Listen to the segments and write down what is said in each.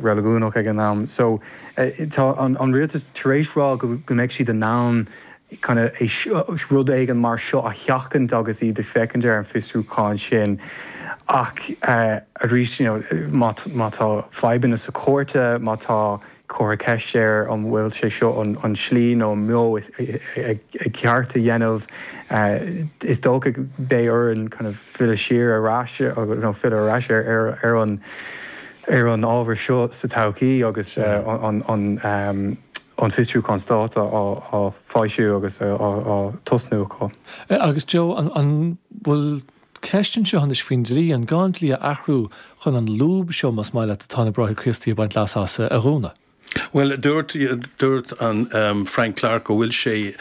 reiligiúnach ag an am. So tá an rialtas tar éis rá go mbeidh siad in ann kind of rud éigin mar seo a sheachaint agus iad ag féachaint ar an bhfiosrúchán sin ach arís you know má tá fadhbanna sa chúirt, má tá curtha ceist ar an bhfuil sé seo an slí nó an modh ceart a dhéanamh is dócha beidh orainn kind of filleadh siar ar ais nó filleadh ar ais ar an. ar an ábhar seo sa todhchaí agus an fiosrúchán Stáit á foilsiú agus á tosnú acu. Agus Joe, an bhfuil ceist anseo anois faoin dlí, an gá an dlí a athrú chun an lúb seo, más maith leat, atá na Bráithre Críostaí ag baint leas as, a dhúnadh? Bhuel, dúirt, dúirt an Frank Clarke go bhfuil sé,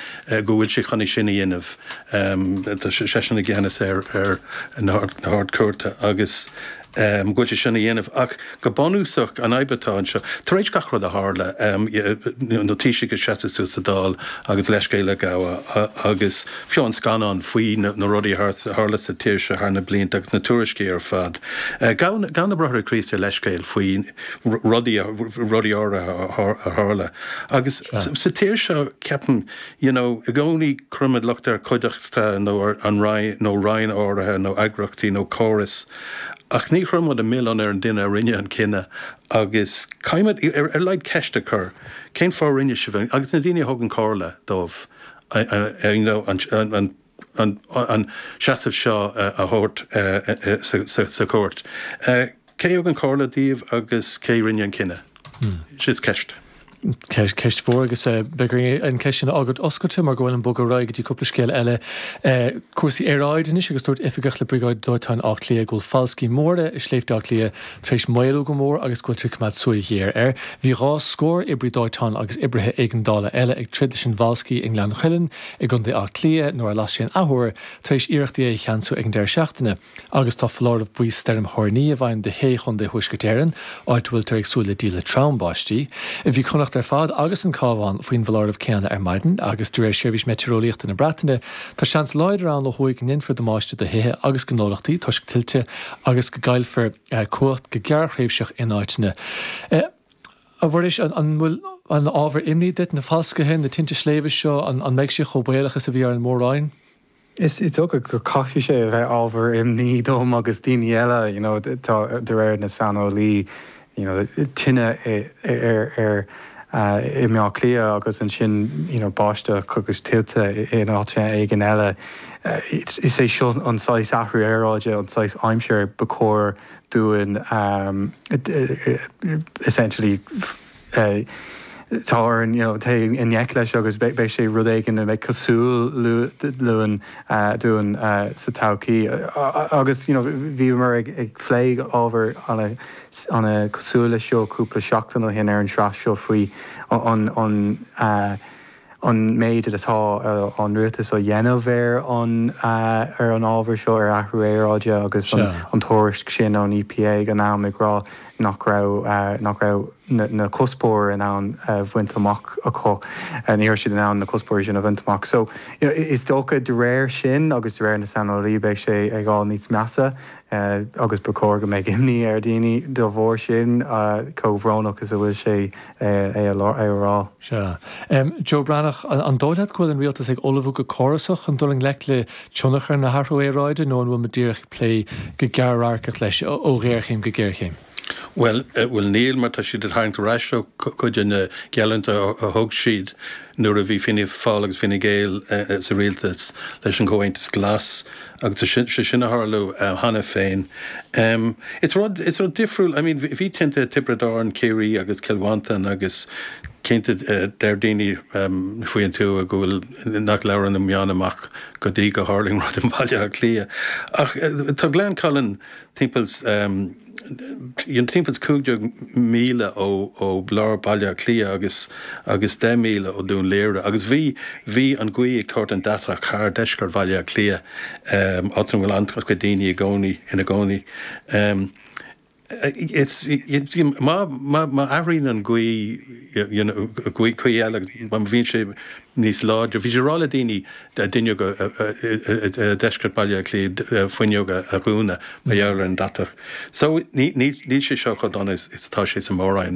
go bhfuil sé chun é sin a dhéanamh. Tá seisean i gceannas ar, ar na hArd-Chúirte agus go bhfuil sé sin a dhéanamh. Ach go bunúsach an fhadhb atá anseo, tar éis gach rud a tharla, na Taoisigh ag seasamh suas sa Dáil agus leithscéal a ghabháil agus fiú an scannal faoi na rudaí a tharla sa tír seo thar na blianta agus na tuairiscí ar fad, ghabh, ghabh na Bráithre Críostaí leithscéal faoi. rudaí áirithe a tharla agus sa tír seo ceapaim you know i gcónaí cuirimid locht ar chuideachta nó ar an Roinn nó Roinn áirithe nó eagraíochtaí nó córas ach ní chuirimid an milleán ar an duine a rinne an cinneadh agus caithfimid ar laghad ceist a chur cén fáth a rinne sibh agus na daoine a thugann comhairle dóibh you know an an seasamh seo a thabhairt sa chúirt. Cé a thug an chomhairle daoibh agus cé a rinne an cinneadh? Sin í an cheist. Ceist mhór agus beidh orainn an ceist sin a fhágáil oscailte mar go bhfuilim ag bogadh ar aghaidh go dtí cúpla scéal eile. Cúrsaí aeráide anois agus dúirt oifigeach le Briogáid Dóiteáin Átha Cliath go bhfuil falscaí móra i Sléibhte Átha Cliath tar éis maolú go mór agus go bhfuiltear ag coimeád súil ghéar air. Bhí dhá scór oibrí dóiteáin agus oibrithe éigeandála eile ag troid leis an bhfalscaí i nGleann Cuilinn i gContae Átha Cliath nuair a las sé an athuair tar éis iarrachtaí é a cheansú ag an deireadh seachtaine agus tá foláireamh buí stoirm thoirní i bhfeidhm do shé chontae Thuaisceart Éireann, áit a bhfuiltear ag súil le díle throm báistí. Bhí Connacht ar fad agus an Cabhán faoin bhfoláireamh céanna ar maidin agus de réir Sheirbhís Meitéareolaíochta na Breataine tá seans láidir ann ó thuaidh go ndéanfar damáiste do thithe agus gnólachtaí toisc tuilte agus go gcaillfear cumhacht go gearrthréimhseach in áiteanna. A Mhuiris, an bhfuil ann ábhar imní duit, na falscaithe, na tinte sléibhe seo, an mbeidh sé chomh baolach is a bhí ar an Mór-Roinn? Is dócha go gcaithfidh sé a bheith ábhar imní dom agus daoine eile, you know, tá, de réir na saineolaí, you know, tine ar, i mBleá Cliath agus ansin, you know, báisteach agus tuilte in áiteanna éigin eile. Is é seo an saghas athrú aeráide, an saghas aimsire ba chóir dúinn essentially tá orainn you know dul i ngleic leis agus beidh sé rud éigin a bheidh coitianta dúinn dúinn sa todhchaí. Agus you know bhíomar ag plé ábhar an-chosúil leis seo cúpla seachtain ó shin ar an sraith seo faoi an an méid atá an Rialtas á dhéanamh ar an ábhar seo, ar athrú aeráide, agus an tuairisc sin ón EPA ag an am ag rá nach raibh nach raibh na cuspóirí in ann a bhaint amach acu, ní raibh siad in ann na cuspóirí sin a bhaint amach. So is dócha de réir sin agus de réir na saineolaithe beidh sé ag fháil níos measa agus ba chóir go mbeadh imní ar dhaoine dá bharr sin, cé chomh brónach is a bhfuil sé é a rá. Sea. Joe Breathnach, an dóigh leat go bhfuil an Rialtas ag ullmhú go córasach chun dul i ngleic le tionchar na hathrú aeráide nó an bhfuil muid díreach ag plé go gearr-radharcach leis, ó ghéarchéim go géarchéim? Bhuel, bhuel níl mar tá siad ag tarraingt ar ais ó chuid de na geallúintí a thug siad nuair a bhí Fianna Fáil agus Fine Gael sa rialtas leis an gComhaontas Glas agus tá sé sin ag tarlú cheana féin. Is rud, is rud difriúil, I mean bhí tinte Tiobraid Árann, Ciarraí agus Cill Mhantáin agus cinnte deir daoine faoi an tuath go bhfuil, nach labhrann na meáin go dtí go dtarlaíonn rud i mBaile Átha Cliath ach tá Gleann Cuilinn, timpeall is timpeall is cúig deag míle ó ó lár Baile Átha Cliath agus agus deich míle ó Dún Laoghaire agus bhí bhí an ghaoth ag tabhairt an deatach thar deisceart Bhaile Átha Cliath em áit a bhfuil an-chuid daoine i gcónaí ina gcónaí. Em It's má má má athraíonn an ghaoth you know, gcaoi gcaoi eile agus má bhíonn sé níos láidre. Bhí sé ráite le daoine daoine i ndeisceart Bhaile Átha Cliath fuinneoga a dhúnadh mar gheall ar an deatach. So níl sé seo chomh dona is atá sé sa Mhór-Roinn.